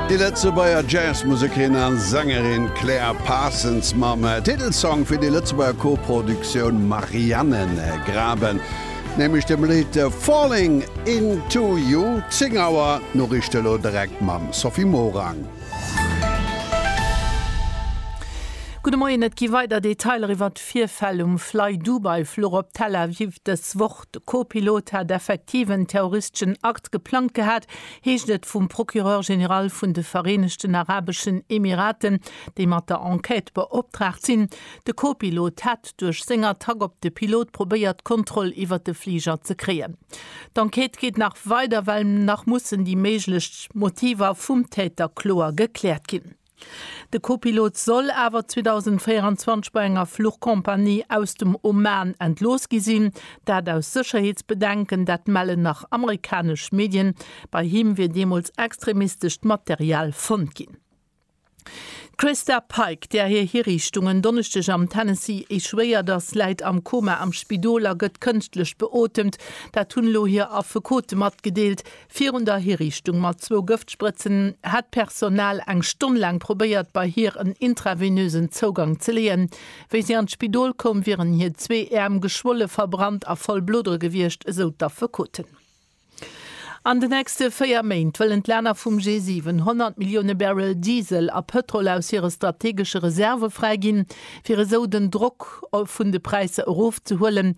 Déi Lëtzebuerger Jazzmusekerin a Sängerin Claire Parsons mam Titelsong fir déi Lëtzebuerger Co-Produktioun Marianengraben, nämlech dem Lidd Falling Into You. Zéng Auer Noriichte lo direkt mam Sophie Morang. Gudde Moien, Et gi weider Detailer iwwert d'Virfäll um Fly-Dubai Fluch op Tel Aviv dës Woch. De Co-Pilot hat effektiv en terroristeschen Akt geplangt gehat, heescht et vum Procureur général vun de Vereenegten Arabeschen Emiraten, déi mat der Enquête beoptraagt sinn. De Co-Pilot hätt duerch seng Attack op de Pilot probéiert, d'Kontroll iwwer de Fliger ze kréien. D'Enquête geet nach weider, well nach mussen déi méiglech Motiver vum Täter kloer gekläert ginn. De Copilot soll awer 2024 bei enger Fluchcompagnie aus dem Oman entlooss gi sinn. Dat aus Sécherheetsbedenken, dat mellen nach amerikanesch Medien. Bei him wier deemools extremistescht Material fonnt ginn. D'Christa Pike, där hir Hiriichtung en Donneschdeg am Tennessee échouéiert ass, läit am Koma am Spidol a gëtt kënschtlech beotemt. Dat hunn elo hir Affekote matgedeelt. Virun der Hiriichtung mat zwou Gëftsprëtzen hätt d'Personal eng Stonn laang probéiert, bei hir en intravenösen Zougang ze leeën. Wéi si an d'Spidol koum, wieren hir zwee Äerm geschwolle, verbrannt a voll Blodere gewiescht, esou d'Affekoten. An de nächste véier Méint wëllen d'Länner vum G7 100 Millioune Barrel Diesel a Pëtrol aus hire strategesche Reserve fräiginn, fir esou den Drock vun de Präisser erofzehuelen.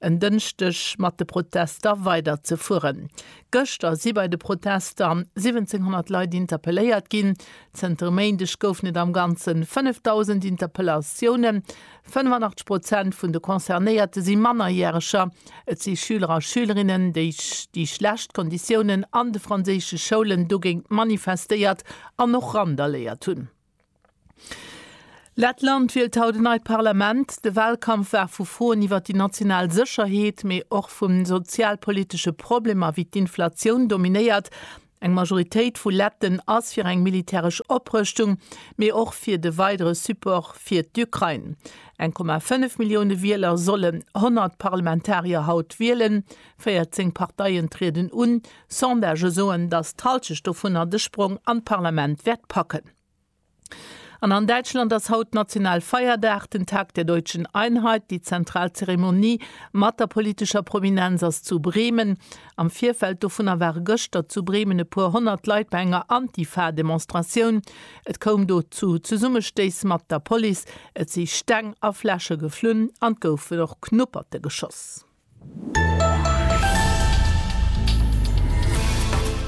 en Dënschdeg mat de Protester weider ze fueren. Gëschter si bei de Protester 1.700 Leit interpelléiert ginn. Zënter e Méindeg goufen et am Ganze 5.000 Interpellatiounen. 85 Prozent vun de Concernéierte si Mannerjäreger. Et si Schüler a Schülerinnen, déi déi schlecht Konditiounen an de franséische Schoulen dogéint manifestéiert an och randaléiert hunn. Lettland wielt haut en neit Parlament. De Wahlkampf war vu Froen iwwer déi national Sécherheet, mee och vu sozialpolitesche Problemer wéi d'Inflatioun dominéiert. Eng Majoritéit vu Letten ass fir eng militäresch Oprëschtung, mee och fir de weidere Support fir d'Ukrain. 1,5 Millioune Wieler solle 100 Parlamentarier haut wielen. 14 Parteien trieden un, Sondagë soen, datt d'Hallschecht dovunner de Sprong an d'Parlament wäert packen. An an Däitschland ass haut national Feierdag, den Tag der deutschen Einheit. Déi zentral Zeremonie mat der politescher Prominenz ass zu Bremen. Am Virfeld dovunner ware gëschter zu Bremen e puer honnert Leit bei enger Antifa-Demonstratioun. Et koum do zu Zesummestéiss mat der Police, et si Steng a Fläsche geflunn an et goufen och Knupperte geschoss.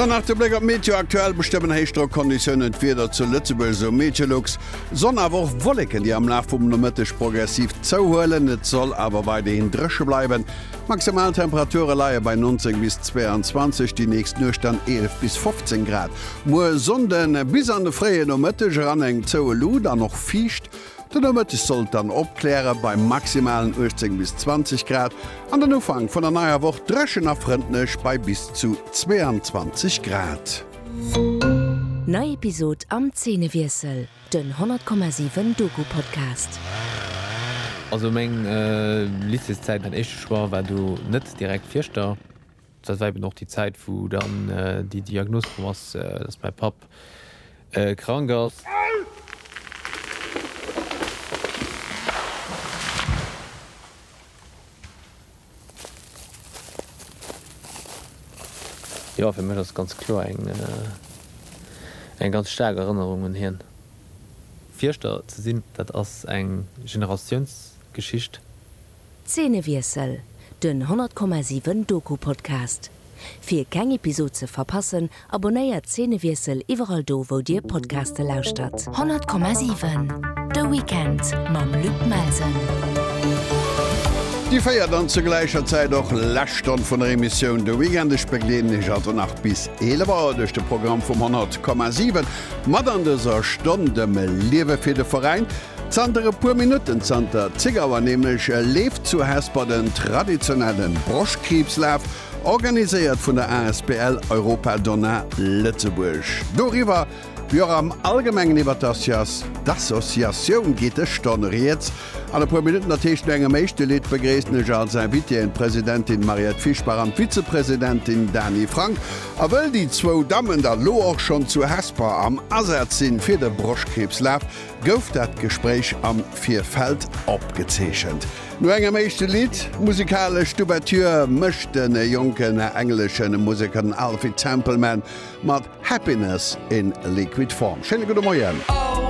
Dann nach de Bléck op d'Meteo, Aktuell bestëmmen Héichdrockonditiounen d'Wieder zu Lëtzebuerg, esou Meteolux. Sonn awer och Wolleken, déi am Laf vum Nomëtteg progressiv zouhuelen. Et soll awer weiderhin dréche bleiwen. D'Maximaltemperature leie bei 19 bis 22, déi nächst Nuecht dann 11 bis 15 Grad. Muer Sonnde bis an de fréie Nomëtteg eran eng zoue Luut an och fiicht. Den Nomëtteg sollt dann opkläre bei maximalen 18 bis 20 Grad an den Ufank vun der neier Woch dréchen a frëndlech bei bis zu 22 Grad. Nei Episod am Zeenewiessel, den 100,7 Doku-Podcast. Also meng Lycéeszäit, mäin éischte Choix war do net direkt Fieschter. Dat war eben och déi Zäit, wou dann déi Diagnos komm ass, dass mäi Papp krank ass. Jo, fir mech ass et ganz kloer eng ganz staark Erënnerung un hien. Fierschter ze sinn, dat ass eng Generatiounsgeschicht. Zeenewiessel, den 100,7 Doku-Podcast. Fir keng Episod ze verpassen, abonnéiert Zeenewiessel iwwerall do wou dir Podcaste lauschtert. 100,7 De Weekend mam Luc Melsen. Déi véiert an zur gläicher Zäit och lescht Stonn vun der Emissioun De Weekend. Ech begleeden iech also nach bis 11 Auer duerch de Programm vum 100,7. Mat an dëser Stonn dem Liewe fir de Veräin, Zanter e puer Minutten, zanter zéng Auer nämlech, leeft zu Hesper den traditionelle Broschkriibslaf, organiséiert vun der Asbl Europa Donna Lëtzebuerg. Doriwwer, wéi och am Allgemengen iwwer d'Associatioun geet e Stonn Rieds. An e puer Minutten, dat heescht no engem éischte Lidd, begréissen ech als Invitéeën d'Presidentin Mariette Fischbach an d'Vizepresidentin Dany Frank. A wëll déi zwou Dammen da lo och schonn zu Hesper am Asaz sinn, fir de Broschkriibslaf gouf dat Gespréich am Virfeld opgezeechent. No engem éischte Lidd, musikalesch d'Ouverture, mécht de jonken englesche Museker den Alfie Templeman mat Happiness in Liquid Form. Schéine gudde Moien.